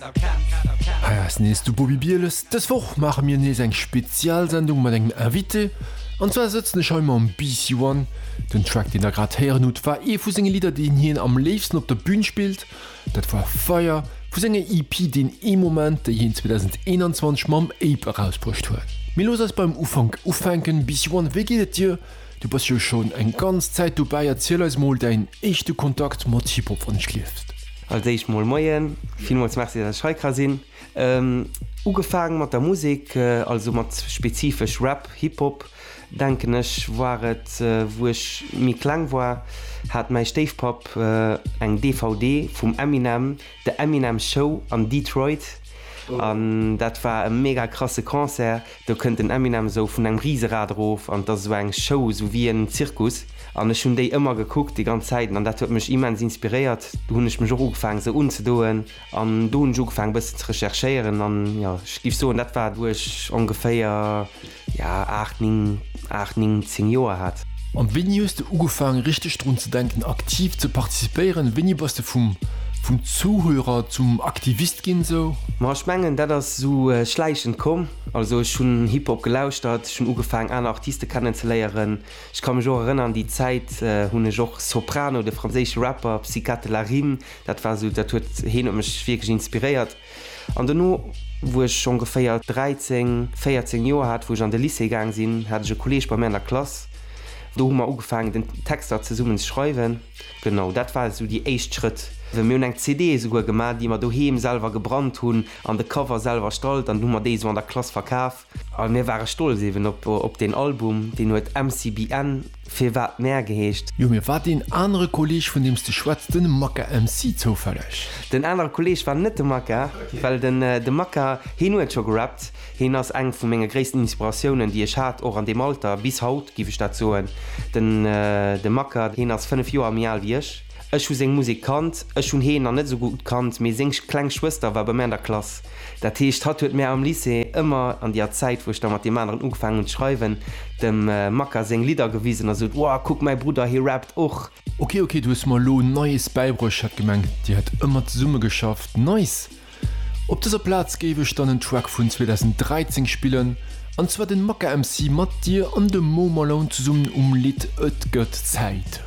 Hei ass nees de Bobby Bieles. Dës Woch maache mir nees eng Spezialsendung mat engem Invité. An zwar sëtzen ech hei mam BC One. Den Track deen der grad héieren hutt war ee vu senge Lidder deen hien am léifsten op der Bün spillt. Dat war Fire vu senger EP Deen ee Moment déi hien 2021 mam Ape erausbruecht huet. Mee looss eis beim Ufank ufänken. BC One wéi geet et dir? Du bass jo schon eng ganz Zäit dobäi, erziel eis mol däin éischte Kontakt mat Hip-Hop wann ech lieft. Als éischt mol Moien, villmools Merci dass ech hei ka sinn. Ugefaang mat der Musek, also mat spezifesch Rap, Hip-Hop, denken ech war et wou ech méi kleng war, hat mäi Stéifpapp eng DVD vum Eminem, The Eminem Show an Detroit, an dat war e mega krasse Concert. Do kënnt den Eminem esou vun engem Riserad erof an et ass esou eng Show, esou wéi en Zirkus. An ech hunn déi ëmmer gekuckt, déi ganz Zäiten, an dat huet mech immens inspiréiert. Do hunn ech mech och ugefaangen esou unzedoen an do hunn ech ugefaangen e bëssen ze recherchéieren an jo, ech géif soen, dat war wou ech ongeféier, jo, aacht, ning, aacht, ning, zéng Joer hat. An wéini hues de ugefaangen richteg drun ze denken aktiv ze participéieren? Wéini bass de vum vum Zuhörer zum Aktivist ginn esou? Ma ech mengen dat ass esou schläichend komm. Also ech hunn Hip Hop gelauschtert, ech hunn ugefaangen aner Artiste kennen ze léieren. Ech ka mech och erënnern déi Zäit hunn ech och Soprano, de franséische Rapper Psykate La Rime, dat war esou dat huet heen huet mech wierklech inspiréiert. An dono, wou ech ongeféier 13, 14 Joer hat, wou ech an de Lycée gaang sinn, hat ech e Kolleeg bei mir an der Klass. Do hu mer ugefaangen, den Texter zesummen ze schreiwen. Genau, dat war esou déi éischt Schrëtt. Mir hunn eng CD esouguer gemaach, déi mer doheem selwer gebrannt hunn an de Cover selwer erstallt an hu mer déi esou an der Klass verkaf. A mir ware stolz eben op deen Album, deen huet MCBN, Firwat Mär geheescht. Jo, mee war deen anere Kolleeg, vun deem s de schwätz, den Maka MC zoufälleg? Den anere Kolleeg war net de Maka, well de Maka, heen huet scho gerappt. Heen ass eng vu menge gréissten Inspiratiounen, déi ech hat, och an deem Alter, bis haut, géif ech dat soen. De Maka, heen ass 5 Joer méi al wéi ech. Ech hu seng Musek kannt. Ech hunn heen nach net esou gutt kannt, mee seng kleng Schwëster war bei mär an der Klass. Dat heescht, hatt huet mär am Lycée ëmmer, an déer Zäit, wou ech da mat deem aneren ugefaangen hun d'Schreiwen, dem Makka séng Lidder gewisen a sot, Wow, kuck, mäi Brudder, hie rappt och! Ok, ok, du hues mer elo Neies bäibruecht, ech hat gemengt, dir hätt ëmmer zesumme geschafft. Nice! Op dëser Plaz géif ech dann en Track vun 2013 spillen, an zwar den Makka MC mat dir an dem Mo Malone zesummen um Lidd Et gëtt Zäit.